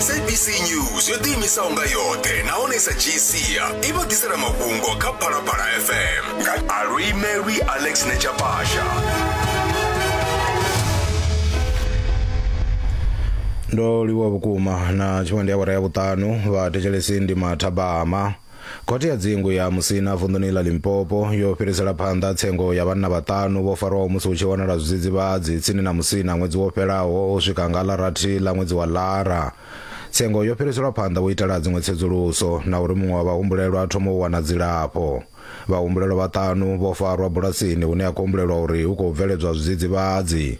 sabc news yo ḓiimisaho nga yoṱhe nahone sa gsia i vha ḓisela mafhungo kha phalaphala fm nga alwimelwi alex nechapasha ndo livhuwa vhukuma na tshifhinga ndi awara ya vhuṱanu vhathetshelesi ndi mathabama Khothe ya dzingu ya Musina vunḓuni ḽa Limpopo yo fhirisela phanḓa tsengo ya vhanna vhaṱanu vho farwaho musi hu tshi wanala zwidzidzivhadzi tsini na Musina ṅwedzi wo fhelaho u swika nga ḽa rathi ḽa ṅwedzi wa Lara. Tsengo yo fhiriselwa phanḓa u itela dziṅwe tsedzuluso na uri muṅwe wa vhahumbulelwa a thome u wana dzilafho. Vhahumbulelwa vhaṱanu vho farwa bulasini hune ha khou humbulelwa uri hu khou bveledzwa zwidzidzivhadzi.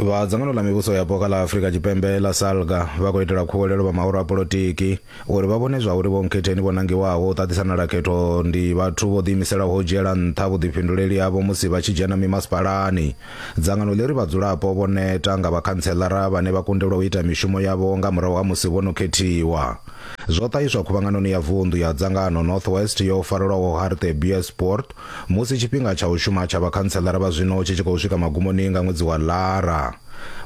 vha dzangano ḽa mivhuso yapo kha ḽa afurika tshipembe ḽa salga vha khou itela khuwelelo vha maoro a polotiki uri vha vhone zwa uri vho nkhetheni vho nangiwaho u ṱaṱisanela khetho ndi vhathu vho ḓiimiselaho u dzhiela nṱha vhuḓifhinduleli havho musi vha tshi dzhena mimasipalani dzangano ḽi ri vhadzulapo vho neta nga vhakhantselara vhane vha kundelwa u ita mishumo yavho nga murahu ha musi vho no khethiwa zwo ṱahiswa khuvhanganoni ya vunḓu ya dzangano North West yo farelwaho Harte Buurspoort musi tshifhinga tsha u shuma tsha vhakhantseḽara vha zwino tshi tshi khou swika magumoni nga ṅwedzi wa Lara.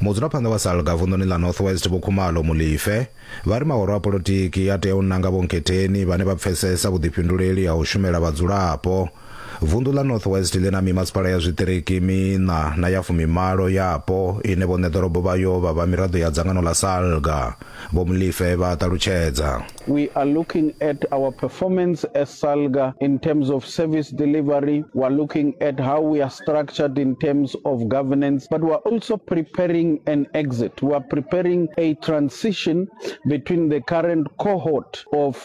Mudzulaphanḓa wa Salga vunḓuni ḽa North West Vho Khumalo Molefe vha ri mahoro a polotiki a tea u nanga vhonketheni vhane vha pfesesa vhuḓifhinduleli ha u shumela vhadzulapo Vundu ḽa North West ḽi na mimasipala ya zwiṱiriki miṋa na ya fumimalo yapo ine vhoṋe ḓorobo vhayo vha vha miraḓo ya dzangano ḽa SALGA, Vho Molefe vha a ṱalutshedza. We are looking at our performance as SALGA in terms of service delivery, we are looking at how we are structured in terms of governance but we are also preparing an exit, we are preparing a transition between the current cohort of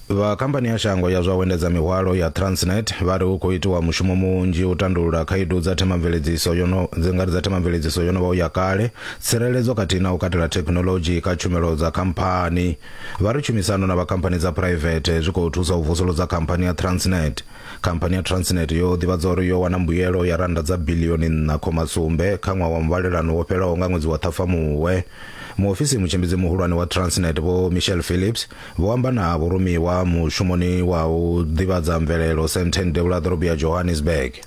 Vha khamphani ya shango ya zwa u endedza mihwalo ya Transnet vha ri hu khou itiwa mushumo munzhi u tandulula khaedu dza themamveledziso yo no dzi nga ri dza themamveledziso yo no vha u ya kale, tsireledzo khathihi na u katela thekhinolodzhi kha tshumelo dza khamphani. Vha ri tshumisano na vha khamphani dza phuraivethe zwi khou thusa u vusuludza khamphani ya Transnet. Khamphani ya Transnet yo ḓivhadza uri yo wana mbuyelo ya rannda dza biḽioni nṋa khoma sumbe kha ṅwaha wa muvhalelano wo fhelaho nga ṅwedzi wa Ṱhafamuhwe. Muofisi mutshimbidzi muhulwane wa Transnet Vho Michelle Phillips Vho amba na vhurumiwa mushumoni wa u ḓivhadza mvelelo Sandton devhula ḓorobo ya Johannesburg.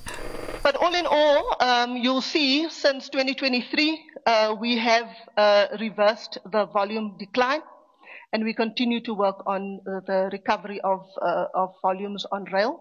But all in all, um, you'll see since 2023, uh, we have uh, reversed the volume decline and we continue to work on the recovery of, uh, of volumes on rail.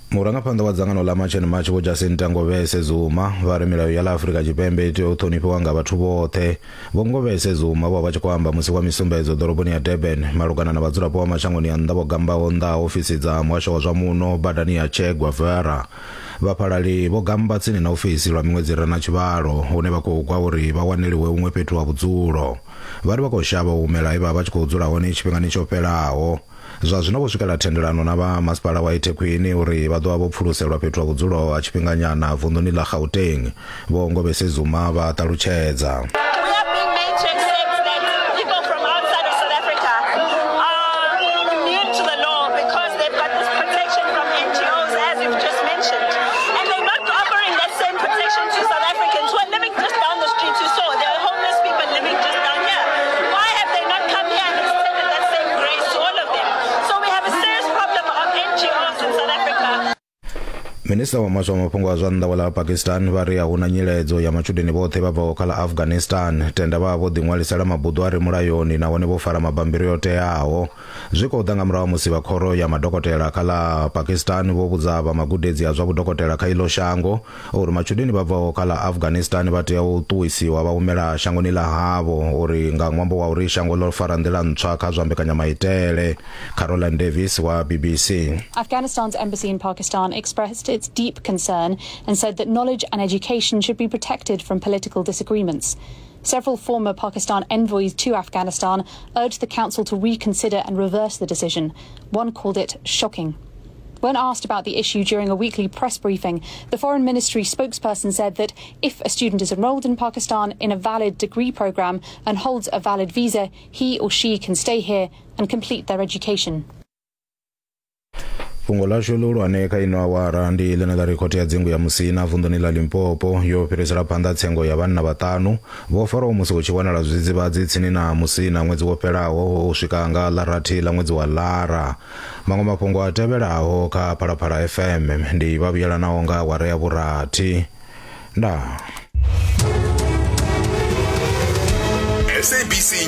Murangaphanḓa wa dzangano ḽa March and March Vho Jacinta Ngovese Zuma vha ri milayo ya ḽa Afrika Tshipembe i tea u ṱhonifhiwa nga vhathu vhoṱhe. Vho Ngovese Zuma vho vha tshi khou amba musi wa misumbedzo ḓoroboni ya Durban malugana na vhadzulapo vha mashangoni a nnḓa vho gambaho nnḓa ha ofisi dza muhasho wa zwa muno badani ya Che Guevara. Vhafhalali vho gamba tsini na ofisi lwa miṅwedzi i re na tshivhalo hune vha khou gwa uri vha waneliwe huṅwe fhethu ha vhudzulo. Vha ri vha khou shavha u humela he vha vha vha tshi khou dzula hone tshifhingani tsho fhelaho. Zwa zwino vho swikela thendelano na vha masipala wa Ithekhwini uri vha ḓovha vho pfuluselwa fhethu ha vhudzulo ha tshifhinganyana vunḓuni ḽa Gauteng. Vho Ngobese Zuma vha ṱalutshedza. minista wa maswa mafhungo a zwa nnḓa wa ḽa pakistan vha ri a huna nyiledzo ya matshudeni vhoṱhe vha bvaho kha ḽa afghanistan tenda vha vho ḓiṅwalisela mabuḓo a re mulayoni nahone vho fara mabambiri o teaho zwi khou ḓa nga murahu ha musi vha khoro ya madokotela kha ḽa pakistan vho vhudza vha magudedzi a zwa vhudokotela kha iḽo shango Uri matshudeni vha bvaho kha ḽa Afghanistan vha tea u ṱuwisiwa vha humela shangoni ḽa havho uri nga ṅwambo wa uri shango ḽo fara nḓila ntswa kha zwa mbekanyamaitele. Caroline Davies wa BBC. Afghanistan's embassy in Pakistan expressed its deep concern and said that knowledge and education should be protected from political disagreements. Several former Pakistan envoys to Afghanistan urged the council to reconsider and reverse the decision. One called it shocking. When asked about the issue during a weekly press briefing, the Foreign Ministry spokesperson said that if a student is enrolled in Pakistan in a valid degree program and holds a valid visa, he or she can stay here and complete their education. fhungo ḽashu ḽihulwane kha ino awara ndi ḽine ḽa ri khothe ya dzingu ya musina vunḓuni ḽa limpopo yo fhirisela phanḓa tsengo ya vhanna vhaṱanu vho faraho musi hu tshi wanala zwidzidzivhadzi tsini na musina ṅwedzi wo fhelaho u swika nga ḽa rathi ḽa ṅwedzi wa lara maṅwe mafhungo a tevhelaho kha phalaphala fm ndi vha vhuyelanaho nga awara ya vhurathi ndaa sabc